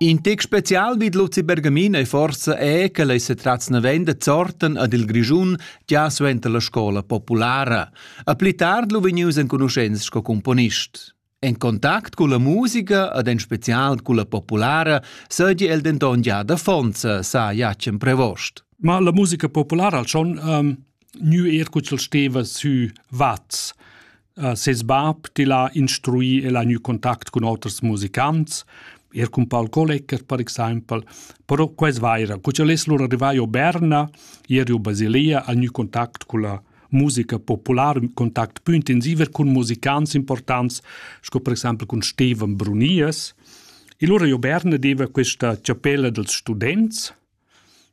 In tec special vid Luzi Bergamin ei forsa è che lei se tratz navenda zorten ad il Grischun già suenter la scola populara. A pli tard lu vegnius enconuschents sco componist. En contact con la musica ed en special con la populara seigi el denton già da Fonza, sa Jacem Prevost. Ma la musica populara al schon um, nu er cuzzel steva sü Vaz. Ses bab til ha instrui e l'ha gnü contact cun oters musicants, eir cun Paul Kollecker per exaimpel, però que es vaira. Cur cha el es lura rivà a Berna, ieri a Basilea, ha gnü contact culla musica populara, ün contact pü intensiv er cun musicants importants, sco per exaimpel cun Steven Brunies. E lura a Berna deva questa chapella dels students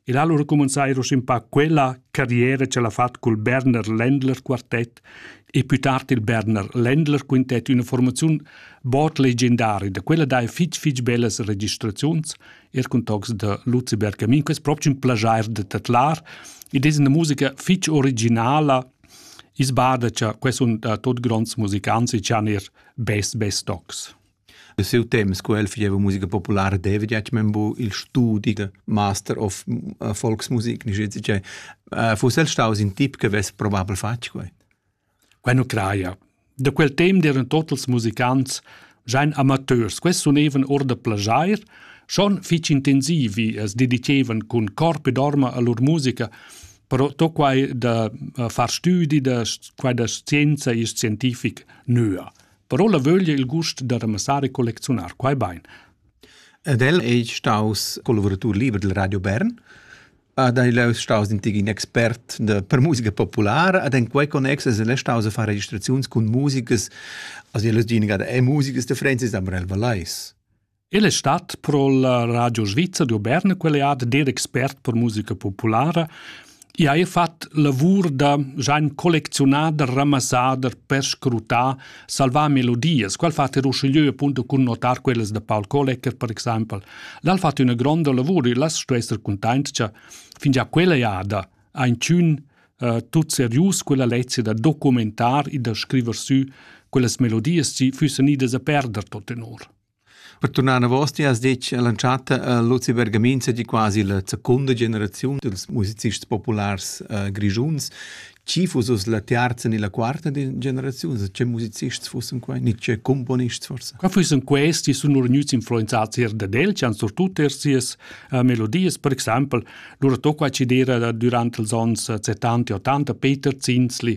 El ha lura cumanzà eir uschè quella carriera ch'el ha fat cul Berner Ländler quartet e pü tard il Berner Ländler quintet üna formaziun bod legendaria. Da quella daja fich fich bellas registraziuns, eir cun tocs da Luciberg Camin. Quest propcha ün plaschair da tadlar ed es üna musica fich originala i's bada cha quai sun da tuot gronds musicants e chan eir best best tocs. De siu temps, co el fageva musica populara, deva detg men bu il studi de master of uh, volksmusik, ni schizze che. Uh, fuss el staus in tip che vess probabel fatg quei? Queno craia. De quel temps eran tot els musicants giain amateurs. Quest sunevan or de plagiair, schon fitg intensivi es dedicevan cun corp ed orma a lur musica, però to quai da uh, far studi da quai da scienza e scientific nöa. però la vöglia il gust da ramassar e collecziunar quai bain. Ed el è staus collaboratur liber del Radio Bern, ad el è staus in expert de, per musica populara, ad en quei connex es el staus a far registraziuns con musikas, also el es geniga da e musikas de Francis Amrel Valais. El es stat pro la Radio Svizra d'Auberna quell'ead ed expert per musica populara e ha fat lavur da Gian collecziunader, ramassader, perscrutar, salvar melodias. Qual fa ter uschigliö appunto cun notar quellas da Paul Kollecker per exaimpel. L'ha fat üna gronda lavur e las sto esser cuntaint cha fingià quella jada ha inchün uh, tut serius quella lezia da documentar e da scriver sü quellas melodias chi füssen idas a perder tot tenor. Per turnar enavos ti has detg all'entschatta a Luzi Bergamin sei quasi la secunda generaziun dils musicists populars uh, grischuns. Chi fuss la terza ni la quarta generaziun? Che musicists fussen quei? Ni che componists forse? Qua fussen questi sun lur gnüts influenzati er dad el, ci han surtut er sias uh, melodies, per exempel lur tocca ci dera durante els ons 70 e 80 Peter Zinzli,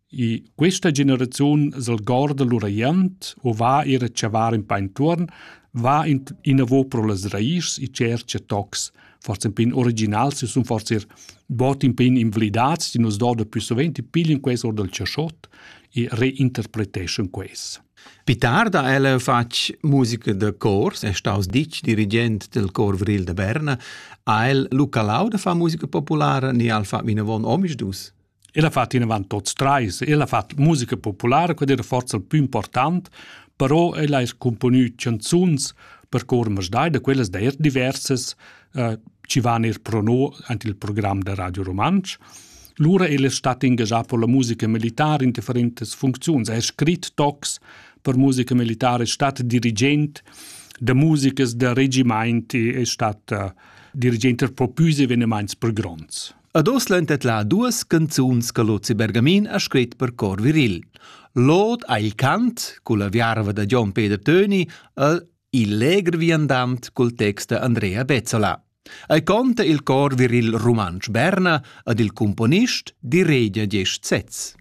Questa generaziun s'al gorda lur aient o va eir a chavar ün pa intuorn, va inavo pro las raischs e tschercha tocs. Forsa ün pin originals e sun forsa eir bod ün pin invlidats, chi nu's doda plü suvent e piglian quels or dal chaschot e reinterpreteschan quels. Pü tard ha ella fatg musica da cors, è staus ditg dirigent del Cor Vril de Berna. Ha el lu calau da far musica populara ni al fa vinavon omisdus? El ha fatto inavant tots trais, el ha fatto musica populara, quella era forse il più important, però el ha componü canzuns per cor masdai, da quellas d'eir diversas, eh, chi van eir pro no ant il program da Radio Rumantsch. Lura el es stat ingagià per la musica militare in differentas funcziuns, ha scrit tocs per musica militare, è stat dirigent da musikas da regimaint e è stat uh, dirigent per propus evenements per gronds. Ad os l'han tetla duas canzuns che Luzi Bergamin ha scrit per cor viril. L'od ha il cant, culla viarva da Gian Peter Töni, el il legr viandant col text da Andrea Bezzola. Ei conta il cor viril rumantsch Berna ad il cumponist di Regia Gest Setz.